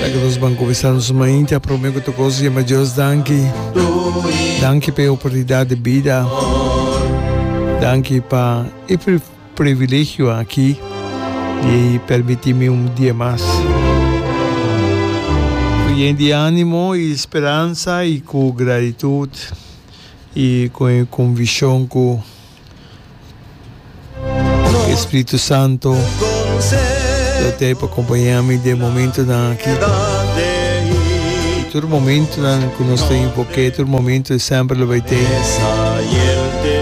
Danki nos ban kuminsá nos mainta. Promé ku ta kos yema Dios danki. Danki pa e oportunidat di bida. Danki pa e privilegio aki di permití mi un dia mas. Ku yen di ánimo i speransa i ku gratitut i ku e konvikshon ku. Espíritu Santo, yo te pa acompañar mi de momento na aquí. Todo momento na que nos está en porque todo momento es siempre lo baite.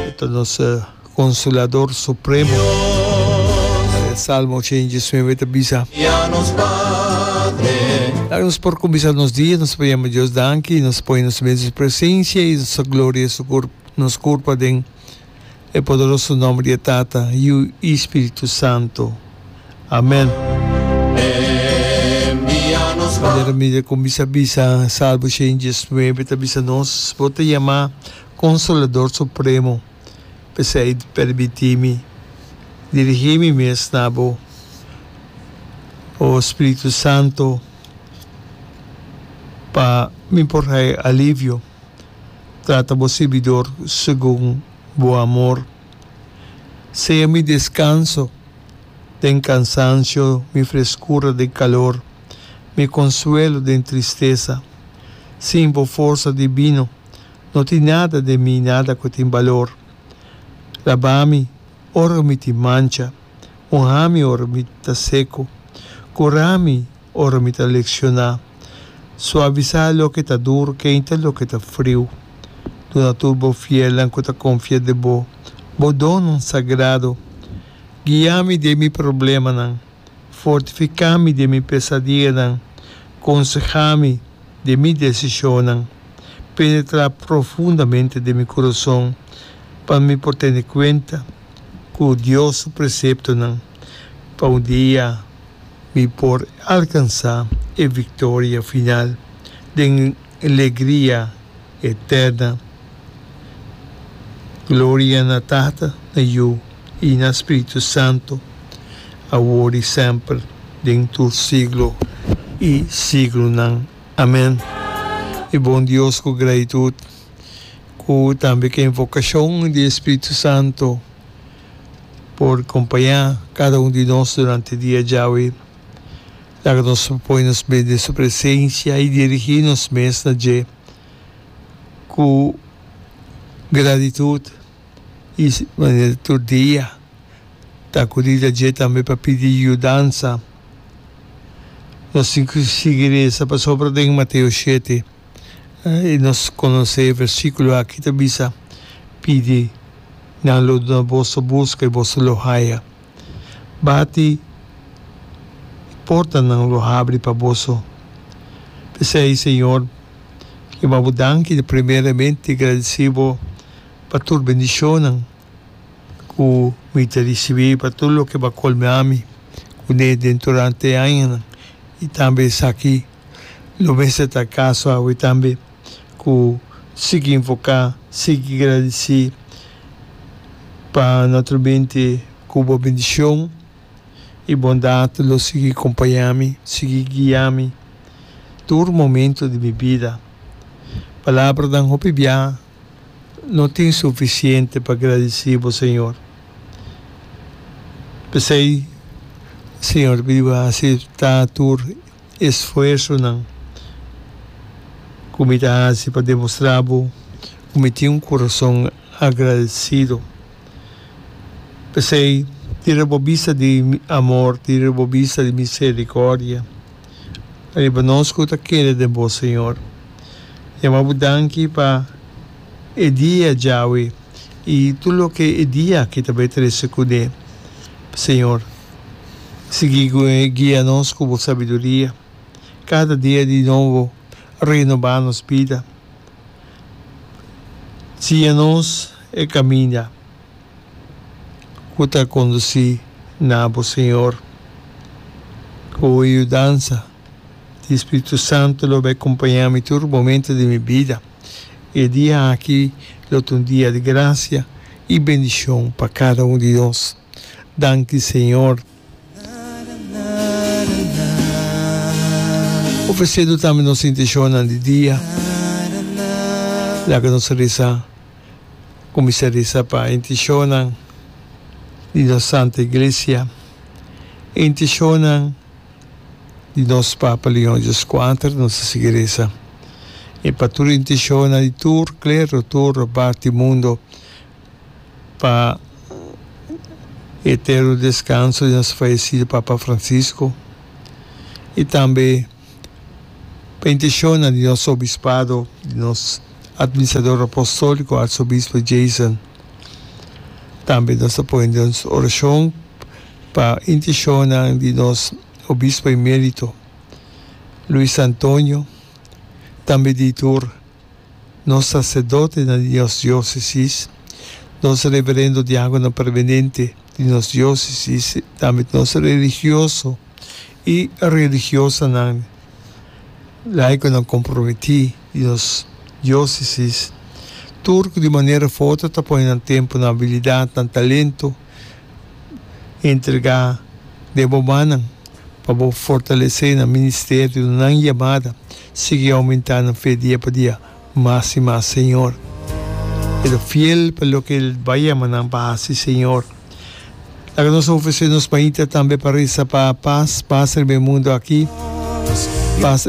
Esto nos eh, consolador supremo. Eh, Salmo 119 está bisa. Daar nos por comenzar nos día, nos podemos Dios danki, nos pone nos en su presencia y nos gloria su cuerpo. Nos kurpa den e poderoso nòmber di e Tata, Yu i Spiritu Santu. Amèn. Padre Ramirez kon bisa bisa Salmo shen i dies nuebe ta bisa nos, Bo ta yamá Konsolador Supremo, p'esei pèrbití mi dirigí mi mes na bo, o Spiritu Santu, pa mi por hai alivio. trata bo sirbidor segun bo amor. Sea mi descanso den cansancio, mi frescura den calor, mi consuelo den tristesa. Sin bo forsa divino no tin nada den mi, nada cu tin balor. Labami ora mi tin mancha, mohami ora mi ta seco, curami. ora mi ta leccioná. Suavisá loke ta dur, keinta loke ta friu. Duna tur bo fielnan cu ta confia den bo, bo donnan sagrado. Guia mi den mi problemanan, fortificá mi den mi pesadianan, consehá mi den mi decisionnan, penetrá profundamente den mi curazon, pa mi por tene cuenta cu Dios su preceptonan pa un dia. Mi por alkansá e viktoria final den legria eterna. Gloria na Tata, na Yu i na Spiritu Santu, awor i semper, den tur siglo i siglonan. Amèn. Mi bon Dios ku gratitut, ku tambe ku invokashon di e Spiritu Santu, por kompañá kada un di nos durante dia djawe. Laga nos poi nos mes den Su presensia i dirigí nos mes na Dje ku gratitut i manera tur dia ta akudí ta Dje tambe pa pidi yudansa. Nos tin ku sigui resa pasobra den Mateo shete. I nos conoce e versiculo aki ta bisa, Pidi, nan lo duna boso, busca, i boso lo haya, bati, i portanan lo habri pa boso. P'esei, Señor, Ki wou Bo danki di primeramente, gradici Bo pa tur bendicionnan cu mi ta ricibi, pa tur loke Bo a colmami cu ne den turante e añanan, i tambe esaki, Lo mester ta caso awe tambe cu sigui invoca, sigui gradici pa notro bente cu bo bendicion y bondad lo sigui compaña mi, sigui guia mi tur momento di mi bida. Palabranan hopi bia no tin suficiente pa gradici bo Señor. P'esey Señor bidi bo haci ta tur esfuersonan ku mi ta hasi pa demostrá bo ku mi tin un kurason agradesido. P'esei, tira bo bista di mi amor, tira bo bista di miserikòrdia riba nos ku ta kere den bo, señor. Yama bo danki pa e dia djawe i tur loke e dia aki ta bai trese kuné, señor. Sigui cu e guia nos cu bo sabiduria. Cada dia di nobo renoba nos bida. Nsina nos e caminda cu ta conduci na bo, Señor. Cu bo yudansa di Spiritu Santo lo bai cumpaña mi tur momento di mi bida. E dia aki lo ta un dia di gracia y bendicion pa cada un di nos. Danki Señor. Ofrecedu tambe nos intencionnan di dia. Laga nos reza cuminsa reza pa e intencionnan di nos Santa Iglesia, e intencionnan di nos Papa Leon Dios Kuater, nos a sigui reza, y pa tur e intencionnan di tur clero, tur parti mundo. pa eterno descanso di nos fallecido Papa Francisco y tambe pa intencionnan di nos Obispado, di nos Administrador Apostolico Arzobispo Jason. Tambe nos ta pone den oracion pa intencionnan di nos Obispo Emerito Luis Antonio, tambe di tur. nos saserdotenan di nos diosesis, nos reverendo diagonan permenente di nos diosesis, tambe nos religioso i religiosanan, laikonan komprometí di nos diosesis, tur ku di manera foto ta pone nan tempu, nan abilidatnan, talentu, Entrega den bo mannan pa bo fortalesé nan ministerio, nan yamada sigui oumentá nan fe dia pa dia mas i mas, Señor. E ta fiel pa loke el bai yama nan pa hasi, Señor. Laga nos ofresé nos mainta tambe pa resa pa pas, pas riba e mundu aki, pas.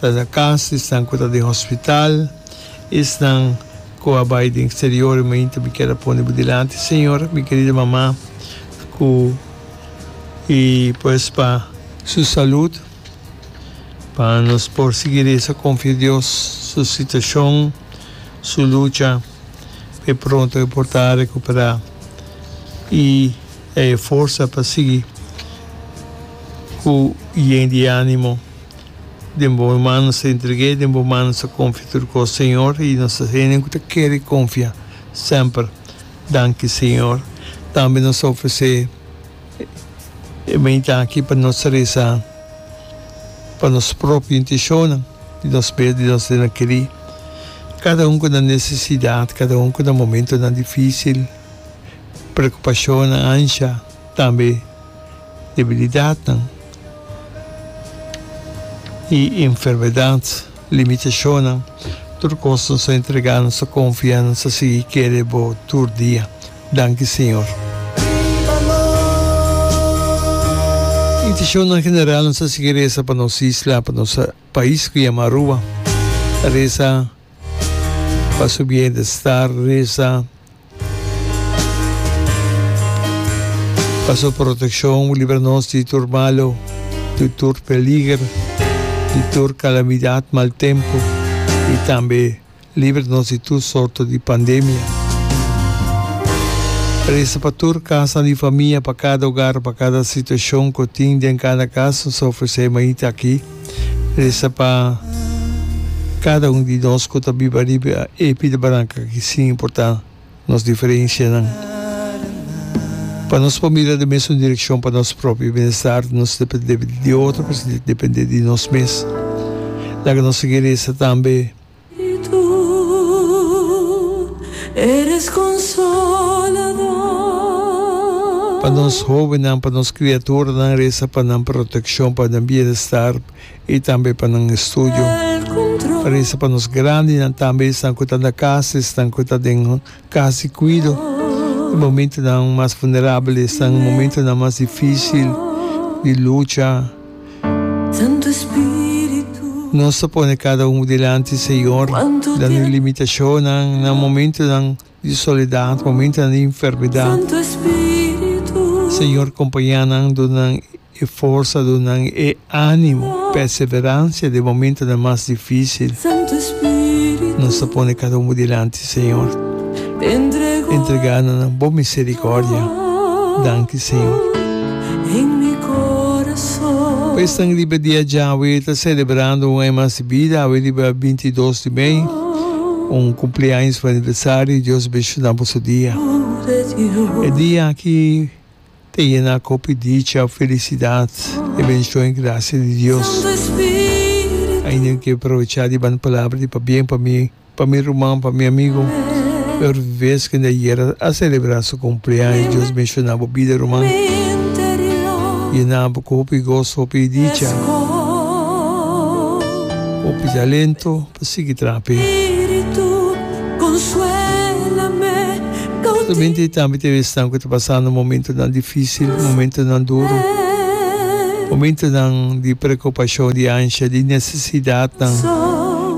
ta den cas di esnan cu ta den hospital, esnan cu a bay den exterior y mainta mi kier a pone bo dilanti Señor, mi querida mama cu y pues pa. Su salud, pa nos por sigui reza confia Dios su situacion, su lucha. e pronto e por ta recuperá y a e forsa pa sigui cu yen di ánimo den bo mano nos ta entreg'é den bo mano nos ta confia tur cos Señor y nos ta hende nan cu ta kere confia semper danki Señor tambe nos ta ofrecé. E bin ta aki pa nos resa pa nos propio intenshonan di nos mes, di nos dena keri. Kada un ku na nesesidat, kada un ku na momentonan difisil, preokupashonnan, ansha, tambe debilidatnan i enfermedat, limitashonnan, tur kos nos a entregá, nos a konfiá, nos a sigui kere Bo tur dia. Danki Señor. Intishonnan general nos ta sigui resa pa nos isla, pa nos pais cu yama Aruba. Resa pa su bienestar, resa pa su proteccion, libra nos di tur malo, di tur peliger, di tur calamidad, mal tempo y tambe Libra nos di tur sorto di pandemia. Resa pa tur kasanan di famia, pa kada ogar, pa kada situashon ku tin den kada kas, nos ta ofresé mainta aki. Resa pa kada un di nos ku ta biba riba e pida baranka aki, sin importá nos diferenshanan. Pa nos por mira den mesun direkshon pa nos propio bienestar, nos dependé di otro, pero sin dependé di nos mes. Laga nos sigui resa tambe. Pa nos hóbennan, pa nos kriaturanan resa pa nan protekshon, pa nan bienestar i tambe pa nan estudio. Resa pa nos grandinan tambe, esnan ku ta na kas, esnan ku ta den. Casi cuido. E momentonan mas vulnerabel esnan momentonan mas dificil di lucha. Nos ta pone cada un dilanti, Señor, den nos limitacionnan, na momentonan di soledad, momentonan di enfermedad. Señor, compaña nan, duna nan. E forsa dunan e animo, perseverancia den momentonan mas dificil. Nos ta pone cada un bo dilanti Señor. Entrega nan na bo misericordia. Danki Señor. Pa esnan riba dia dja awe ta celebrando un aña mas di bida, awe riba binti i dos di mei, un cumpleaños of aniversario, Dios benshoná boso dia. E dia aki. Ta yena cu hopi dicha, felicidad y bendición y gracia di Dios. Ay nen ke provecha di ban palabra di pabien pa mi, pa mi ruman, pa mi amigo. E ora ves kende ayera a celebra su cumpleaños, Dios benshona bo bida ruman. Yena bo cu hopi goso, hopi dicha, hopi talento. Ta sigui traha p'e. Spiritu consuela me cautivo. Mente tambe ta haber esnan cu ta pasando momentonan dificil, momentonan duro, momentonan di preocupacion, di ansha, di necesidadnan.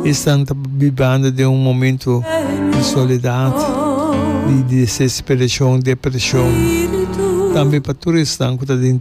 Esnan ta bibando den un momento di soledad, di desesperacion, depresion. Tambe pa tur esnan cu ta den.